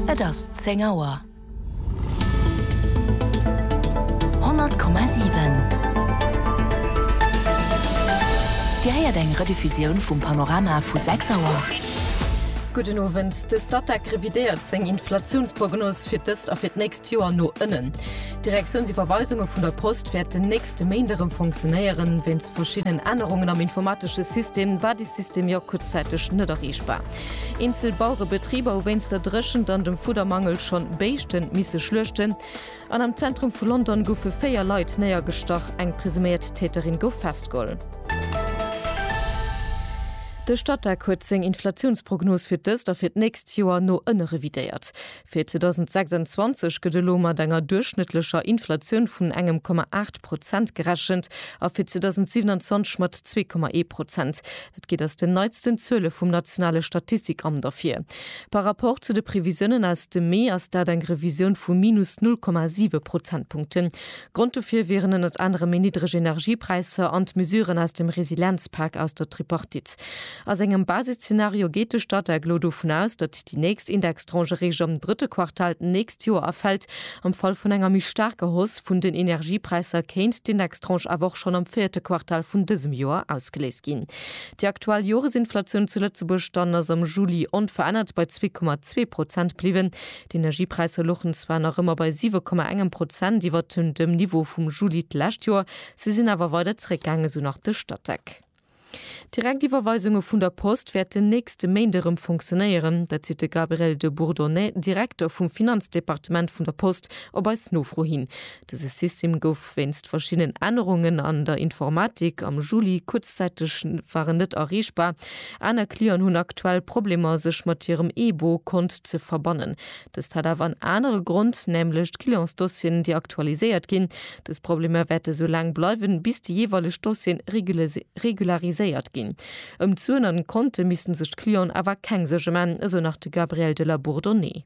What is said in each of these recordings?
Et ass 10 Auer. 100,7 Dir héiert eng Rediffusioun vum Panorama vu 6 Auer. Gudden Owend. De Statec revidéiert seng Inflatiounsprognos fir d'ëst a fir d'nächst Joer no ënnen. D'Direktiounsiwwerweisunge vun der Post wäerten nächste Méint erëm fonctionéieren. Wéinst verschiddenen Ännerungen am informatesche System war dee System jo kuerzzäiteg net erreechbar. Eenzel Bauerebetriber hu wéinst der Dréchent an dem Fuddermangel schonn Béischten misse schluechten. An am Zentrum vu London goufe 4 Leit néiergestach, eng presuméiert Täterin gouf festgeholl. De Statec huet seng Inflatiounsprognos fir d'ëst a fir d'nächst Joer no ënne revidéiert. Fir 2026 gëtt elo mat enger duerchschnëttlecher Inflatioun vun engem Komma aacht Prozent gerechent a fir 2027 mat zwee Komma ee Prozent. Dat geet aus den neitsten Zuele vum nationale Statistikamt ervir. Par Rapport zu de Previsiounen aus dem Mee ass dat eng Revisioun vu minus null Komma siwe Prozentpunkten. Grond dofir wieren ënnert anerem méi niddreg Energiepräisser an d'Mesuren aus dem Resilienzpak aus der Tripartite. A sengem Basisszenario geet de Statec elo dovun aus, datt déi nächst Indextranche eréischt am drëtte Quartal d'nächst Joer erfält. Am Fall vun enger méi staarker Hausse vun den Energiepräisser kéint d'Indextranche awer och schonn am véierte Quartal vun dësem Joer ausgeléist ginn. Déi aktuell Joresinflatioun zu Lëtzebuerg dann ass am Juli onverännert bei zwee Komma zwee Prozent bliwwen. D'Energiepräisser luchen zwar nach ëmmer bei 7,1 Prozent iwwer dem Niveau vum Juli d'lescht Joer, se sinn awer weider zeréckgaangen, esou nach de Statec. D'Direktiwwerweisunge vun der Post wäerten nächste Méint erëm funktionéieren. Dat seet de Gabriel de Bourdonnais, Direkter vum Finanzdepartement vun der Post, op eis Nofro hin. Dëse System gouf. Wéinst verschiddenen Ännerungen an der Informatik am Juli kuerzzäiteg war en net erreechbar. Aner Clienten hunn aktuell Problemer sech mat hirem eBo Kont ze verbannen. Dëst hat awer en anere Grond, nämlech d'Clientsdossieren déi aktualiséiert ginn. Dës Problemer wäerte sou laang bleiwen bis déi jeeweileg Dossieren regulariséiert ginn. Ëm d'Suen an d'Konte missten sech d'Clienten awer keng Suerge man, esou nach de Gabriel de la Bourdonnais.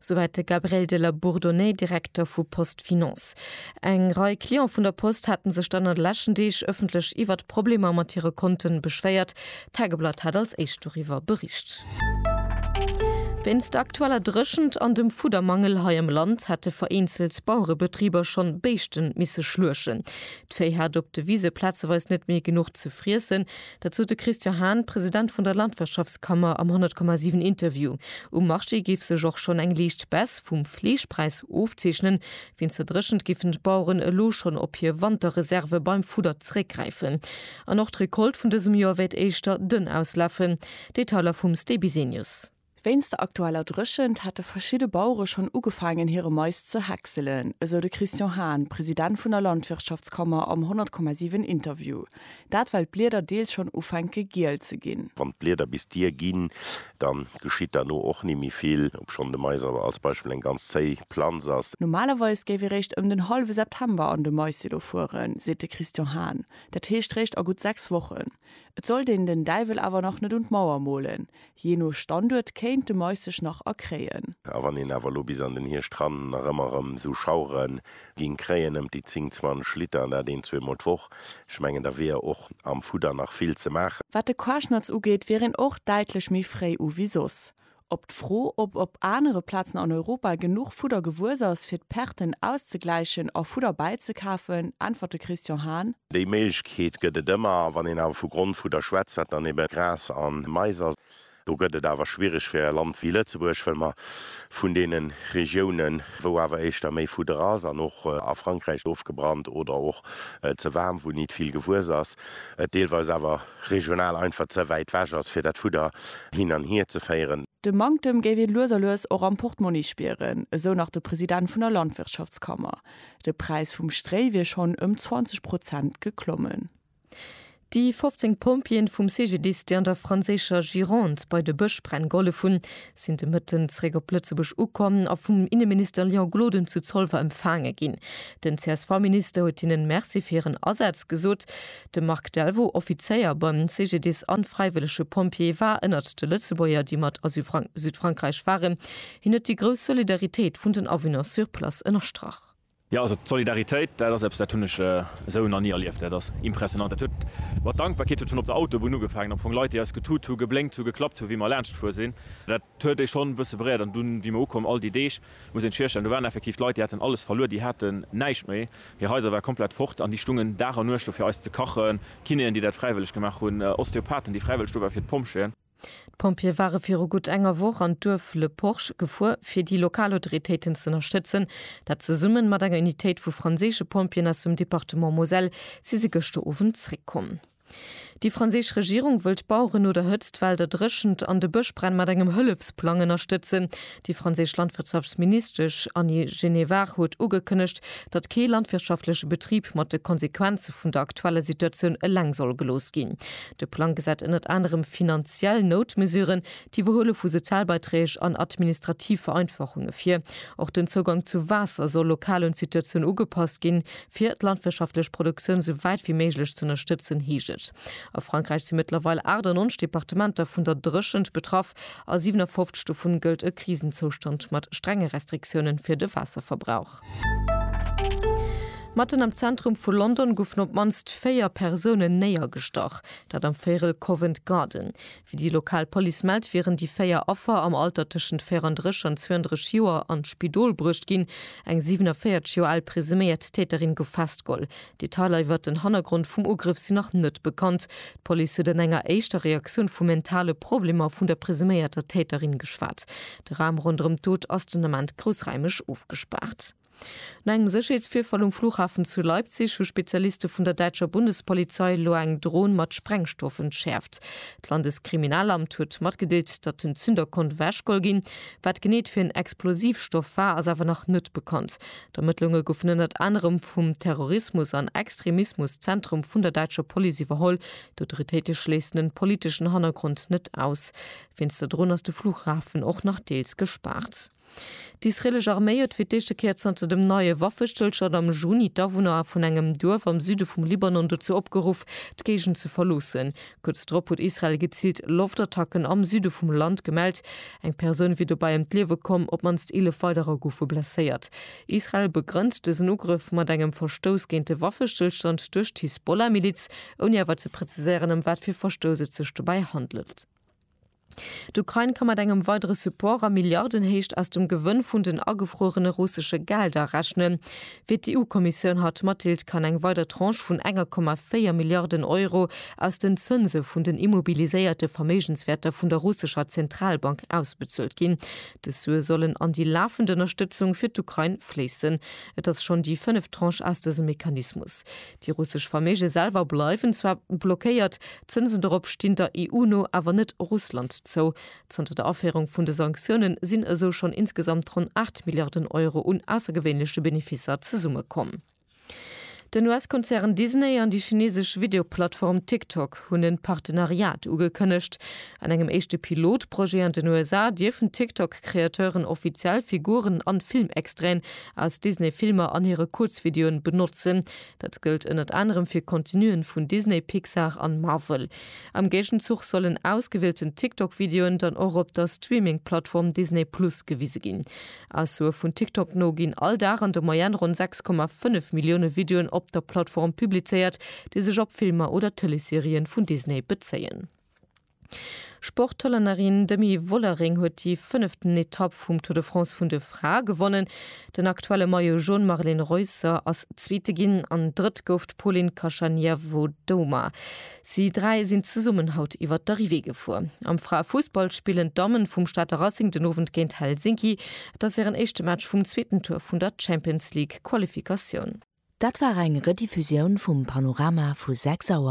Souwäit de Gabriel de la Bourdonnais, Direkter vu Post Finance. Eng Rei Client vun der Post hate sech dann an de leschten Deeg ëffentlech iwwert d'Problemer mat hire Konten beschwéiert. D'Tageblatt hat als éischt doriwwer bericht. Wéinst der aktueller Dréchent an dem Fuddermangel hei am Land hate vereenzelt Bauerebetriber schonn Béischten misse schluechen. D'Véi hat op de Wise plazeweis net méi genuch ze friessen. Dat sot de Christian Hahn, President vun der Landwirtschaftskammer am 100,7 Interview. Um Marché géif sech och schonn eng liicht Baisse vum Fleeschpräis ofzeechnen. Wéinst der Dréchent géifen d'Baueren elo schonn op hir Wanterreserve beim Fudder zeréckgräifen. An och d'Recolte vun dësem Joer wäert éischter dënn auslafen. Detailer vum Stéby Senius. Wéinst der aktueller Dréchent hätte verschidde Bauere schonn ugefaangen hire Mais ze häckselen, esou de Christian Hahn, President vun der Landwirtschaftskammer am 100,7 Interview. Dat well d'Blieder deels schonn ufänke giel ze ginn. Wann d'Blieder bis d'Dier ginn, da geschitt derno och ni méi vill, obschonn de Mais awer als Beispill eng ganz zéi Planz ass. Normalerweis géif ee réischt ëm den hallwe September an de Maissilo fueren, seet de Christian Hahn, dat heescht réischt a gutt sechs Wochen. Et sollt een den Däiwel awer nach net un d'Mauer molen, jee no Standuert kéint de Mais sech nach erkréien. A wann een awer elo bis an den Hierscht ran nach ëmmer erëm esou Schauere géing kréien, ëmt déi 10, 20 Liter, an dat een, zwee Mol d'Woch, ech mengen da wier och am Fudder nach vill ze maachen. Wat de Quaschnatz ugeet, wier een och däitlech méi fréi u wéi soss. Op d'Fro, ob op anere Plazen an Europa genuch Fudder gewuess ass, fir d'Perten auszegläichen a Fudder bäizekafen, äntwert de Christian Hahn. Déi Méiglechkeet gëtt et ëmmer. A wann een awer vu Grondfudder schwätzt, wat dann ebe Gras a Mais ass, do gëtt et awer schwiereg fir e Land wéi Lëtzebuerg, well mer vun deene Regiounen, wou awer éischter méi Fudder ass an och a Frankräich ofgebrannt oder och ze waarm, wou nit vill gewuess ass, et deelweis awer regional einfach ze wäit wech ass fir dat Fudder hin an hier ze féieren. De Manktem géif ee lues a lues och am Portmonni spieren, esou nach de President vun der Landwirtschaftskammer. De Präis vum Stréi wier schonn ëm 20 Prozent geklommen. Déi 15 Pompjeeën vum CGDIS, déi an der franséischer Gironde bei de Bëschbränn gehollef hunn, sinn de Mëtten zeréck op Lëtzebuerg ukomm a vum Inneminister Léon Gloden zu Zolwer empfaange ginn. Den CSV-Minister huet hinnen Merci fir hiren Asaz gesot. De Marc Delvaux, Offizéier beim CGDIS an fräiwëllege Pompjee, war ënnert de Lëtzebuerger, déi mat a Südfrankräich waren. Hien huet déi grouss Solidaritéit vun den Awunner sur place ënnerstrach. Jo, also d'Solidaritéit, dat ass eppes, dat hunn ech esou nach ni erlieft. Dat ass impressionant. Dat huet mat Dankbarkeet, huet schonn op der Autobunn ugefaangen, am Fong Leit, déi eis getut hu, geblénkt hu, geklappt hu, wéi mer laanschtfuer sinn. Dat huet ee schonn e bësse beréiert. An dunn, wéi mer ukomm, all déi Deeg, Muss een sech virstellen, do waren effektiv d'Leit, déi haten alles verluer, déi haten näischt méi, hir Haiser ware komplett fort an déi stungen Dag an Nuecht do fir eis ze kachen, Kinéen, déi dat fräiwëlleg gemaach hunn, Osteopathen, déi fräiwëlleg do waren, fir d'Pompjeeën. D'Pompjeeë ware viru gutt enger Woch an d'Duerf Le Porche gefuer, fir déi lokal Autoritéiten ze ënnerstëtzen. Dat zesummen mat enger Unitéit vu franséische Pompjeeën aus dem Departement Moselle si se gëschter Owend zeréckkomm. Déi franséisch Regierung wëll d'Baueren no der Hëtzt, d'Well, der Dréchent an de Bëschbränn mat engem Hëllefsplang ënnerstëtzen. Déi franséisch Landwirtschaftsministesch Annie Genevard huet ugekënnegt, datt kee landwirtschaftleche Betrib mat de Konsequenze vun der aktueller Situatioun eleng soll gelooss ginn. De Plang gesäit ënnert anerem finanziell Noutmesuren, d'Iwwerhuele vu Sozialbeiträg an administrativ Vereinfachunge vir. Och den Zougang zu Waasser soll lokal un d'Situatioun ugepasst ginn, Fir d'landwirtschaftlech Produktioun sou wäit wéi méiglech ze ënnerstëtzen, heescht et. A Frankräich si mëttlerweil 98 Departementer vun der Dréchent betraff. A 57 dovun gëllt e Krisenzoustand mat strenge Restriktioune fir de Waasserverbrauch. Matten am Zentrum vu London goufen op d'mannst véier Persoune néiergestach, dat am Véirel Covent Garden. Wéi déi lokal Police mellt, wieren déi véier Affer am Alter tëschent 34 an 32 Joer an d'Spidol bruecht ginn. Eng 47 Joer al presuméiert Täterin gouf festgeholl. Detailer iwwert den Hannergrond vum Ugrëff sinn nach net bekannt. D'Police huet an enger éischter Reaktioun vu mentale Problemer vun der presuméierter Täterin geschwat. De Raum ronderëm d'Dot ass den Ament groussraimeg ofgespaart. No engem Sécherheetsvirfall um Flughafen zu Leipzig hu Spezialiste vun der däitscher Bundespolizei elo eng Dron mat Sprengstoff entschäerft. D'Landeskriminalamt huet matgedeelt, datt den Zünder konnt ewechgeholl ginn. Wat genee et fir en Explosivstoff war, ass awer nach net bekannt. D'Ermëttlunge goufen ënnert anerem vum Terrorismus an Extremismus-Zentrum vun der däitscher Police iwwerholl. D'Autoritéite schléissen en politeschen Hannergrond net aus. Wéinst der Dron ass de Flughafen och nach deels gespaart. D'israelesch Arméi huet fir d'éischte Kéier zanter dem neie Waffestëllstand am Juni d'Awunner vun engem Duerf am Süde vum Libanon dozou opgeruff, d'Géigend ze verloossen. Kuerz drop huet Israel geziilt Loftattacken am Süde vum Land gemellt. Eng Persoun wier dobäi ëm d'Liewe komm, op d'mannst 11 weiderer goufe blesséiert. Israel begrënnt dësen Ugrëff mat engem Verstouss géint de Waffestëllstand duerch d'Hisbollah-Miliz, ouni awer ze preziséieren, ëm wat fir Verstouss et sech dobäi handelt. D'Ukrain ka mat engem weidere Support a Milliardenhéicht aus dem Gewënn vun den agefruerene russesche Gelder rechnen. Fir d'EU-Kommissioun hat d'Mathilde kann eng weider Tranche vun 1,4 Milliarden Euro aus den Zënse vun den immobiliséierte Verméigenswäerter vun der russescher Zentralbank ausbezuelt ginn. Dës Sue sollen an déi lafend Ënnerstëtzung fir d'Ukrain fléissen. Et ass schonn déi fënneft Tranche aus dësem Mechanismus. Déi russesch Verméige selwer bleiwen zwar blockéiert, d'Zënsen dorop stinn der EU no awer net Russland zou. Zanter der Aféierung vun de Sanktioune sinn esou schonn insgesamt ronn 8 Milliarden Euro un aussergewéinleche Benefisser zesummekomm. Den US-Konzern Disney an déi chinesesch Videoplattform TikTok hunn en Partenariat ugekënnegt. An engem éischte Pilotprojet an den USA dierfen TikTok-Kreateuren offiziell Figuren an Filmextraiten aus Disney-Filmer an hire Kuerzvideoen benotzen. Dat gëllt ënnert anerem fir Contenuen vun Disney, Pixar an Marvel. Am Géigenzuch sollen ausgewielten TikTok-Videoen dann och op der Streaming-Plattform Disney Plus gewise ginn. Aussoe vun TikTok no ginn all Dag an der Moyenne ronn 6,5 Millioune Videoen op der Plattform publizéiert, déi sech op Filmer oder Tëleesserien vun Disney bezéien. Sporthollännerin Demi Vollering huet déi fënneften Etapp vum Tour de France vun de Frae gewonnen. Den aktuelle Maillot Jaune Marlen Reusser ass Zweete ginn an Drëtt gouf d'Polin Kashaniavodoma. Si dräi sinn zesummen haut iwwer d'Arrivée gefuer. Am Fraefussball spillen d'Damme vum Stater Racing den Owend géint Helsinki. Et ass hiren éischte Match vum zweeten Tour vun der Champions League Qualifikatioun. Dat war eng Rediffusioun vum Panorama vu 6 Auer.